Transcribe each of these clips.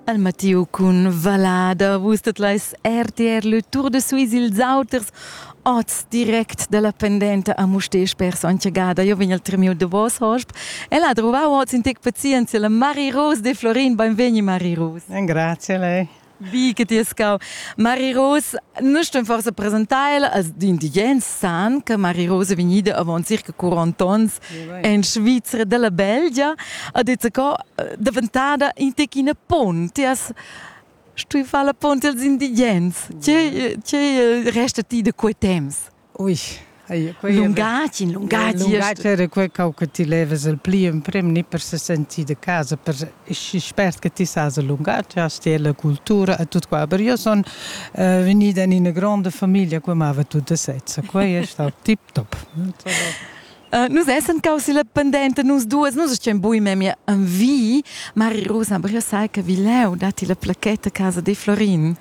Al Matteo cun Valada. Vus tot leis RTR le Tour de Suisse ils auters oz direct dalla pendenta a Mustesch per Sontgada. Io vegn al tremiu de vos hosp. El ha trovau oz in tec pazienzia la Mari Rose de Florin. Benvegni Mari Rose. Grazie lei. Wie geht dir Skau? Mari Ros, noi stem forse presentar als indigens san che Mari Ros è vegnida avant circa 40 onns in Svizzera della Belgia ha detto che è diventata in tecina ponti as stui fare la ponti als indigens. Che, che resta ti da quei temps? lungatg in lungatg era quei cau che ti levas el pli emprem ni per se sentir de casa per spert che ti sas il lungatg hast ti la cultura e tut qua aber io son uh, venida in una grande famiglia che amava tut de sezza quei è stato tip top Uh, nus essem causi la pendente nus duas, nus estem bui memia an vi, Mari Rosa, aber io sai che vi leu dati la placetta casa di Florin.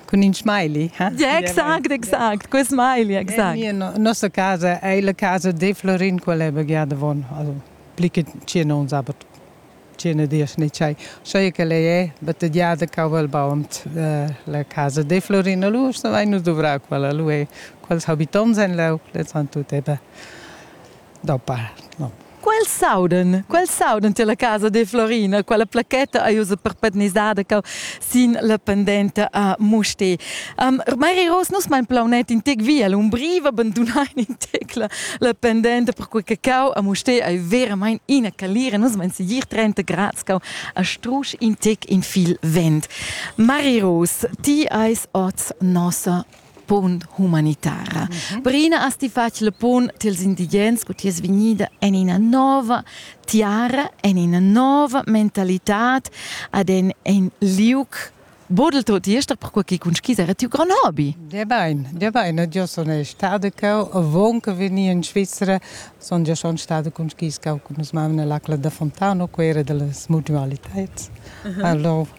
Cun in smiley. Ja, exact, exact. Quel smiley, exact. In mia nossa casa è la casa di Florin, quella è begiada von. Also, pli che tschient ons, aber tschient dies nicht sei. Sai che lei è battegiada Cauvelbaum, la casa di Florin. Lui, se vai nous dovrar quella, lui è. Quels habitants en leu, le san tutte bene. da part. No. Quel sauden, quel sauden tier la casa de Florina, quella plaquetta ei ussa perpetunisada cau sin la pendenta a Muste. Um, Mari Ros, nus mein plaunet in tec via l'umbriva, abandonain in tec la, la pendenta, perquei che cau a Muste ei veramente ina calira, nus mein sigir 30 grad cau a strusch in tec in fil vent. Mari Ros, ti eis oz nossa punt humanitara. Brina as ti fatg le pun tils indigens cu ti es vegnida en ina nova tiara, en ina nova mentalitad, ad en in liuc bodel tot ester perquei che cun skis era tiu gran hobby. Der Bein, der Bein, ed io sun stada cheu avonca vegnir in Svizra, sun gia schon stada cun skis cau cun mes mamma nell'acla da Fontana, quera delle smudnualitads. Uh -huh. Allora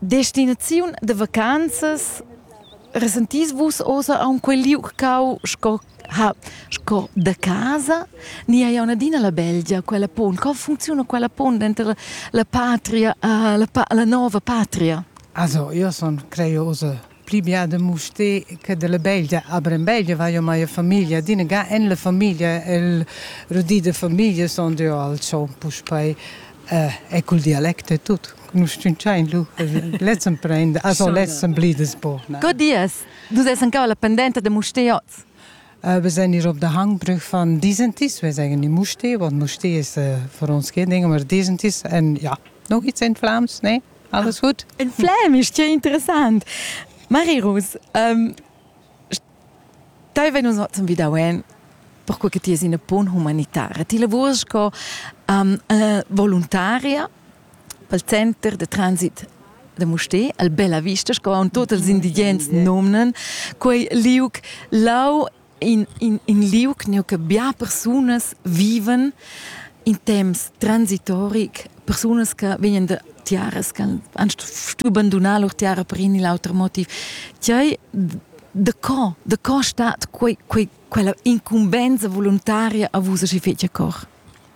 Destinaziun da vacanzas resentis vus ossa aunc quei liug cau sco ha sco da casa? Ni hai auna adina la Belgia, quella pon? Co funcziuna quella pon denter la, la patria, la, la nova patria? Also, io sun crei ossa pli bia da Mustér che della Beglia. A Brembeglia vai ormai a famiglia. Adina ga en la famiglia, el rudì de famiglia son deu al ciò, puspei eh, è col dialect e tutto. Nous stunchain lu, lezzem prende, also lezzem blides po. Co dies? Dus essen cau la pendente de Mustér oz? Äh, wir sind hier auf der Hangbrück von Disentis. Wir sagen in Musté, want Musté ist äh, für uns kein Ding, aber Disentis. Und ja, noch gibt es in Flams, ne? Alles gut? Ein Flem ist ja interessant. Marie Rus, ähm, Dai venu zum Vidauen perché che ti es una pun humanitara. Ti lavurs co um, uh, voluntaria pel center de transit de Mustè, al Bella Vista, sco on tots els indigents nomnen, quei liuc lau in, in, in liug neu che bia persunas viven in temps transitoric, persunas che vegnan da tiaras che han stuto abbandonare lur tiara per in l'altro motiv. Tiai da co, da co stat quei, quei, quella incumbensa volontaria a vus a si fece cor?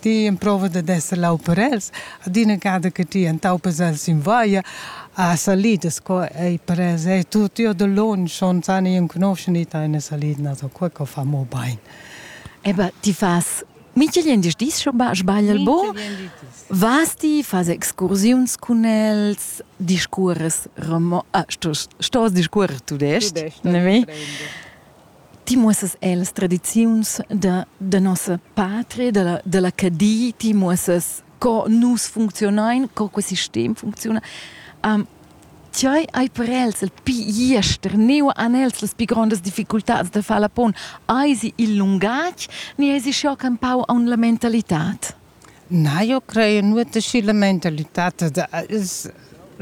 ti emprova dad esser lau per els. Adina gada che ti entaupas els in vaia a salidas qua ei per els e tut io da lon schon san io conoscen i eine salidna so qua co fa mo bain. Eba ti fas Minchel gliendis dis schon sbagl al bo? Vas ti, fas excursiuns cun els, discuors romo... Ah, stos, stos discuors tudest, ne mi? ti muossas ellas tradiziuns da, da nossa patria, dalla, dalla Cadi, ti muossas co nus funcziunain, co quest sistem funcziuna. Um, ti hai, hai per els il pi jester, neu han els las pi grondas difficultads da far la pon. Hai si il lungatg, ni hai si schiocca un pau aun la mentalitad? Na, io crei nuot aschi la mentalità da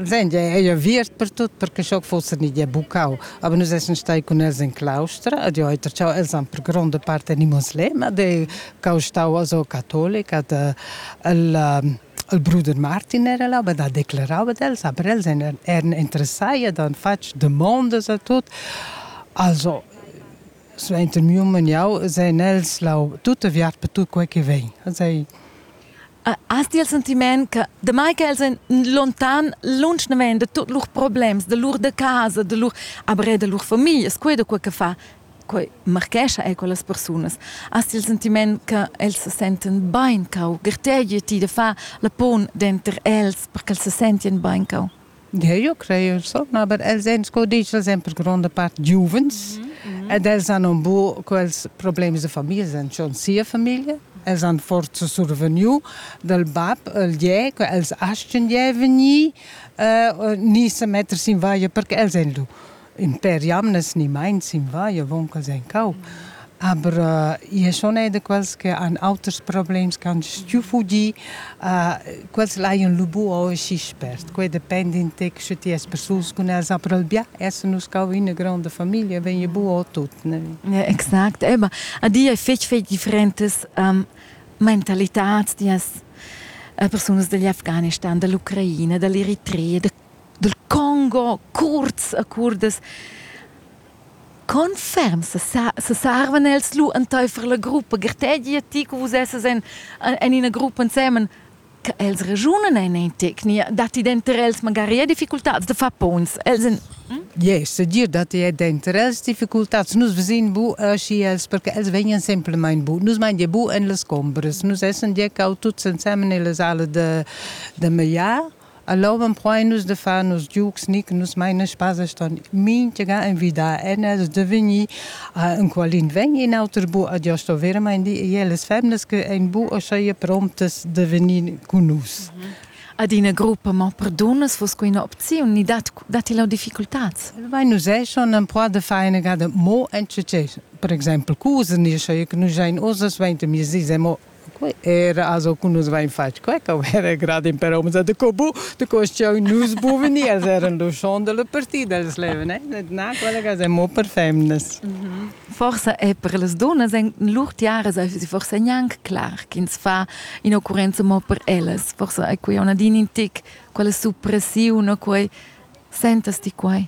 senti ei aviert per tut perche sch'jeu fuss in ideer bucau, aber nus essan stai cun els in claustra ed jeu hai tertgau els han per gronda part animals lem ed ei cau stau also catolic ed il il bruder Martin era là ed ha declarau ad els, aber els eran interessai ed han fatg demondas a tut. Also Suenter miu maniau seign els lau tut aviart per tut quei che vegn. Ei Has ti il sentiment che demai che els ein lontan, lunsch naven da tuts lur problems, da lur da casa, da lur aber er da lur familias, quei da quei che fa, quei marchescha ei quellas persunas. Has ti il sentiment che els se senten bein cau, gertegi ti da fa la pon denter els perché els se sentien bein cau? Eu creo son, aber els èn, sco dici, els èn per gronda part giuvens mm -hmm. ed els han un bu quels problems de famiglia, els han schon sia famiglia, els han forza survegniu dal bab il gè, che els astgen gè vegnir uh, ni se metters in vaia perché els èn lu. in per jamnas ni meins in vai avon ch'els ein cau. Aber äh, io schon è da quels che han auters problems che han stuù fugir, äh, quels laian lu bu oschi spert. Quei depende in tec sche ti es persuls cun els, aber albia essen nus cau in grande familia, vegn bu o tut. Ne? Ja, exakt. Eben. A dir è fetg, fetg differentes ähm, mentalität, die es äh, persunas degli Afghanistan, dell'Ucraina, dell'Eritrea, de dal Congo cuorts a curdas. Confirm se sa seservan els lu enteifer la gruppa gartegi ti che vus esses en en ina gruppa ensemen che els ragiunan en in tecnia dat ti denter els magari e difficultads da far pons els en Yes, dir dat è denter els difficultads nus vesin bu aschi els perché els vegnan semplamein bu nus mein bu en las combras nus essen dir cau tuts ensemen nella sala da da mallar Allora empruain nus da far nos giugs ni che nus main a spaza ston mintga invidà en els da vegnir enqualin vegn in auter bu ad io sto veramain dir e las femnas che ein bu uschia promptas da vegnir cun nus. Ad ina gruppa mo per dunnas vos co ina opziun ni dat, datti la difficultads? Vai nus è schon empruà da fare una gada mo en per exemple cusen, io so che nus jain uss 20 miezis e mo Quei era also cu nus vein fatg quei, che era grad in per homens, de co bu, de co sch'jeu nus buveni, els eran luschond dalla partida, els levan, eh, na, collegas, e mo per femnas. Forsa è per las dunnas en lur tiaras forsa gnanc clar ch'ins fa in'occurrenza mo per ellas. Forsa è quei una din in tic, quella suppressiun, quei sentas ti quei?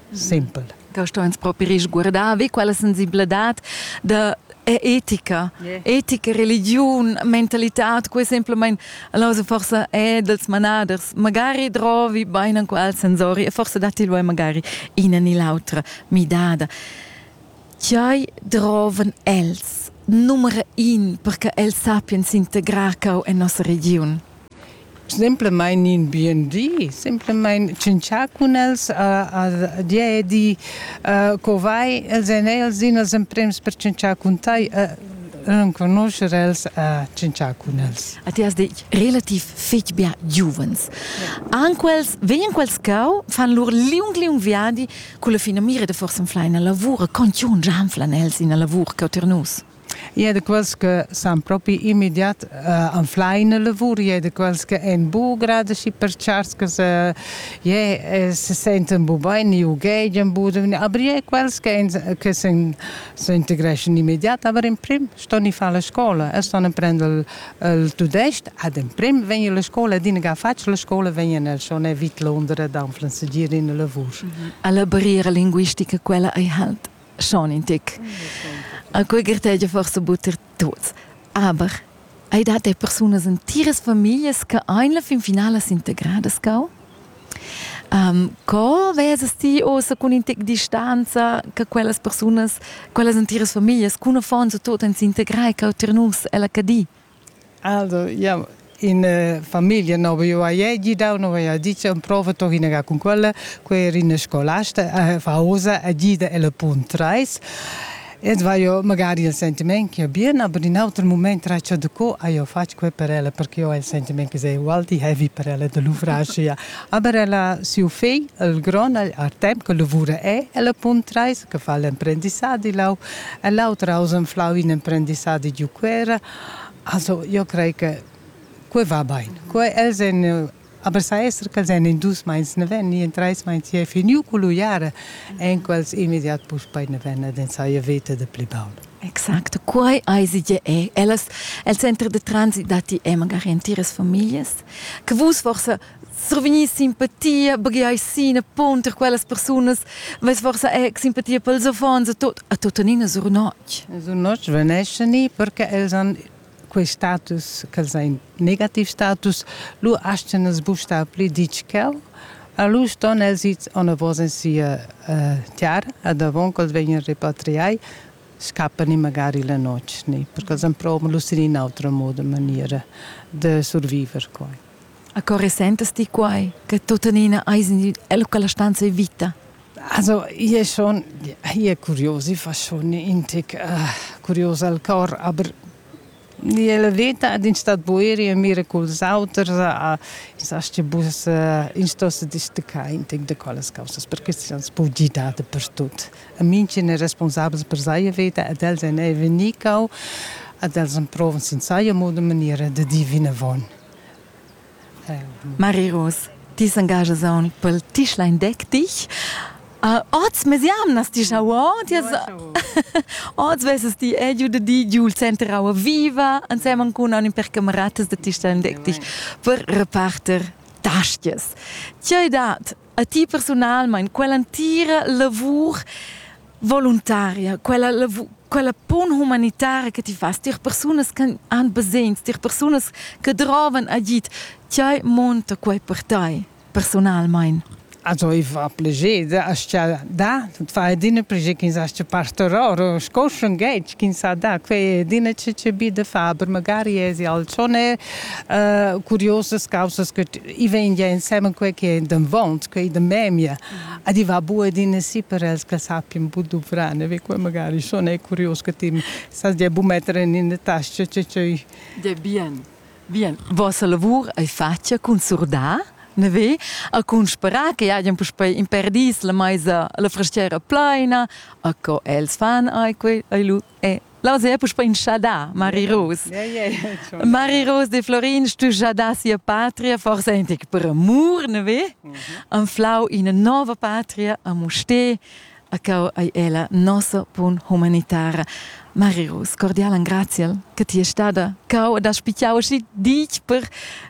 Simpel. Da sto ins propi risguardar, ve quella sensibladad da è etica, yeah. etica, religiun, mentalità, quei semplamein allora forse è dels manaders, magari drovi bein an qual sensori e forse datti lui magari ina ni l'autra midada. Chai droven els, numero in, perché els sappien s'integrar cau en nossa region. Semplamain in bien di, semplamain tschintschar cun els a, a dir e di uh, co vai els èn els din els emprems per tschintschar cun tai. Uh, renconoscer els a tschintschar cun els. A ti has detg relativ fetg bia giuvens. An quels, vegnan quels cau, fan lur liung liung viadi, con la fina mira de forse in fleina lavura, con ti un gianflan els in lavur cau ter nus. e de quels che san propi immediat uh, anflar in lavur, e de quels che ein bu grade și perchars che se, je, se senten bu bene, ughegian bu, aber je quels che, che se, se integreschan immediat, aber in prim ston i fare la scuola, e ston prendere il tudesc, ad in prim vengono la scuola, din che faccio la scuola, vengono schon evit Londra da anflansigire in lavur. Alla barriera linguistica quella ei halt? schon in Tick. A quei grtegia forse butter tuts. Aber hai dat dei persunas in tiras familias che ein la fin finala s'integradas cau? Um, co vesas ti ossa cun in tic distanza che quellas persunas, quellas in tiras familias, cun affons o tot ein s'integrai cau ter nus ella Cadi? Also, ja, in eh, famiglia no vaiva ei gidau, no vaiva dit prova tohinaga cun quella, quei era ina scolasta eh, faosa a gida ella punt 3. Ins vaio magari il sentiment che è bien, aber in auter moment traccia de co io faccio quel per ella, perché ho il sentiment che è ugual di heavy per ella de l'ufracia. Aber ella, siu figl, il gron, ha tempo che lavora è, ella punt 3, che fa l'emprendissadi lau e l'auter ha anflau in emprendissadi giu Cuera. Also, io crei che quei va bein. Quei els en aber sa esser che els en in dus meins ne ven, in treis meins je finiu cu lu jare, en quels immediat puspei ne ven ed en saia vete de pli baul. Exacto, quai eisi je è. Ellas, el centro de transit dati è magari en tiras familias, che vus forse survegnir simpatia, baghiai sin pont per quellas persunas, vess forsa ec simpatia pels affons a tot a tuttenina sur notg. Sur notg veneschen ni perché els han quei status, ch'els ein negativ status, lu astgan els bustar pli ditg ch'el. A lu ston els its anavos in sia uh, tiara, ad avon ch'els vegnan repatriai, scappan ni magari la notg, ni, perché els han provan lu sin in autra moda, maniera de surviver quai. A co resentas ti quai, che tuttenina eis in el quella stanza e vita? Also, io è schon, io è curios, io fa schon in tic uh, curios al cor, aber la vita ad in stat boeri e mira culs auters a in sa che bus in sto se distacar in tic de quelles cosas perché si ans pu di date per tut a minchen è responsabels per seine vita ad els en è venicau ad els en provan sin seine moda maniera de divina von Mari Ros, ti s'engaschas aunc pel tischlein deck dich. Uh, oz mes jamnas ti schau ord oz vesses ti è giu de di giul center aua viva ensemen cun anim per cameratas de tischlein deck dich per reparter tastias. Tgei dat A ti personalmein quell'entira lavur voluntaria, quella, lavur, quella pun humanitara che ti fas, tier persunas che han basegns, tier persunas che drovan agid, ti monta quei per tei personalmein. Also ich war pleger, hast ja da, das war dine pleger, ins hast pastoror, sco schon geht, ins ha da, quei dine ce ce bi de fa, aber magari es ja schon äh, curiosas causas che i vegn gia ensemen quei che è davant, quei da memia. Ad i va bua din sì per els che sappien bu duvrar, ne ve magari schon è curios che ti sa dia bu mettere in tasca che c'è. De bien. Bien, vossa lavur ei fatga cun surdar, ne ve, a cun sperar che hajan puspei imperdis la meisa la fraschiera pleina, a co els fan ai quei, ai lu Eh, Las è puspè inchadà, Mari Rose. Ja, ja, ja, Mari Rose de Florin, stu jadà sia patria, forse antic per amur, ne ve? Mhm. Anflau ina nova patria a Musté, a cau ai ella nossa pun humanitara. Mari Rose, cordial graziel che ti è stata cau da spicchiau si dich per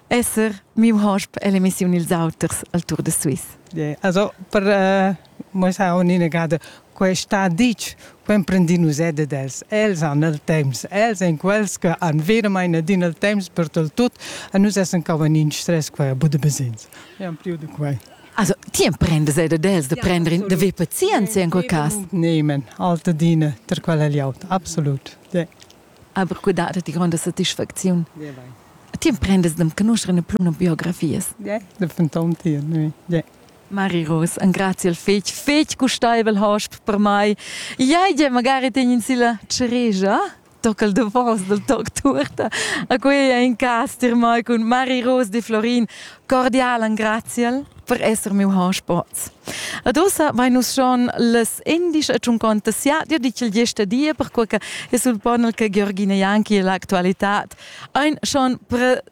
esser mio hosp alle missioni ils auters al Tour de Suisse. Yeah. Also per uh, Mo sa on inagada questa ditg, co emprendin nus er dad els. Els han il temps, els èn quels che han veramain adina il temps per tal tut e nus essan cauvan in stress qua a Budabesins. Abbiamo più di quai. Also, ti emprendes er dad els de prendere in de ver pazienza in quel cas? Nehmen, alte Dine, ter quella liaut, absolut. Ja. Aber que dat ti gronda satisfacziun. Ja, vai. Ti emprendes de conoscere ne plum biografias? Ja, de fantom ti, oui. Ja. Mari Ros, engrazi il fetg, fetg gustaivel hosp per mai. Iei, magari tegn silla ceregia tocca il davos del toc turta. A quei è in cas dir mai cun Mari Ros di Florin. Cordial engraziel per esser miu hospoz. Ad ussa vai nus schon les indisch e tschunconta siadio di ch'il gesta dia per quella e sul ponel che Georgina Janki e l'actualità ein schon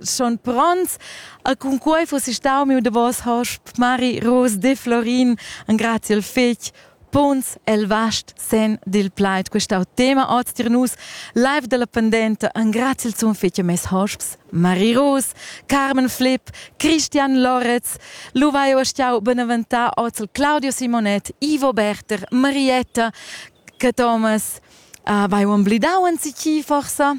schon pronts a cun quei fuss stau miu davos hosp Mari Rose de Florin an grazie il fich punts el vast sen dil plaid questau tema oz tir nus live della pendente an grazie il zum fich mes hosps Mari Rose, Carmen Flip, Christian Loretz, Luvaio Stiau Beneventà Ozel Claudio Simonet, Ivo Berter, Marietta, Thomas, uh, vai un blidau an si chi forsa?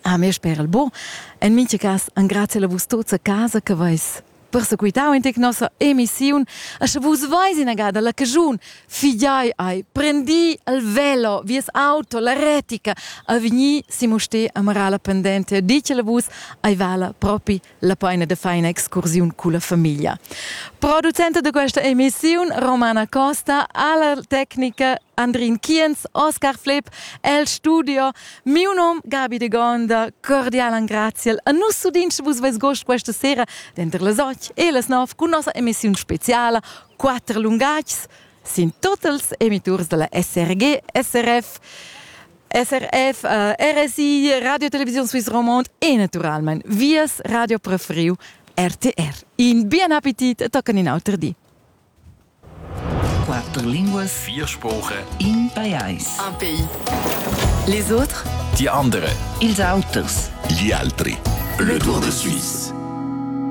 Ah, mi sper il bu. En mincha cas engrazia la vus tuts a casa che vais persequitau in tec nossa emissiun e sche vus veis inagada la cagiun figiai ai prendi il velo vies auto la retica a vigni si mo ste amara la pendente dice la vus ai vala propi La paina da far ina excursiun culla famiglia. Producenta da questa emissiun, Romana Costa, alla tecnica Andrin Kienz, Oscar Flipp, el studio. Miu nom Gabi de Gonda, cordial angraziel a nus udins vus veis gost questa sera denter las 8 e las 9 con nossa emissiun speciala Quatter lungatgs sin tots els emiturs della SRG SRF. SRF, RSI, Radio Televisión Suisse Romande e naturalmente Vias Radio Preferiu RTR. In bien appetit toccano in altro di. Quattro lingue, vier Sprachen, in pajais. Un pays. Les autres? Die anderen. Ils autres. Gli altri. Le Tour de Suisse.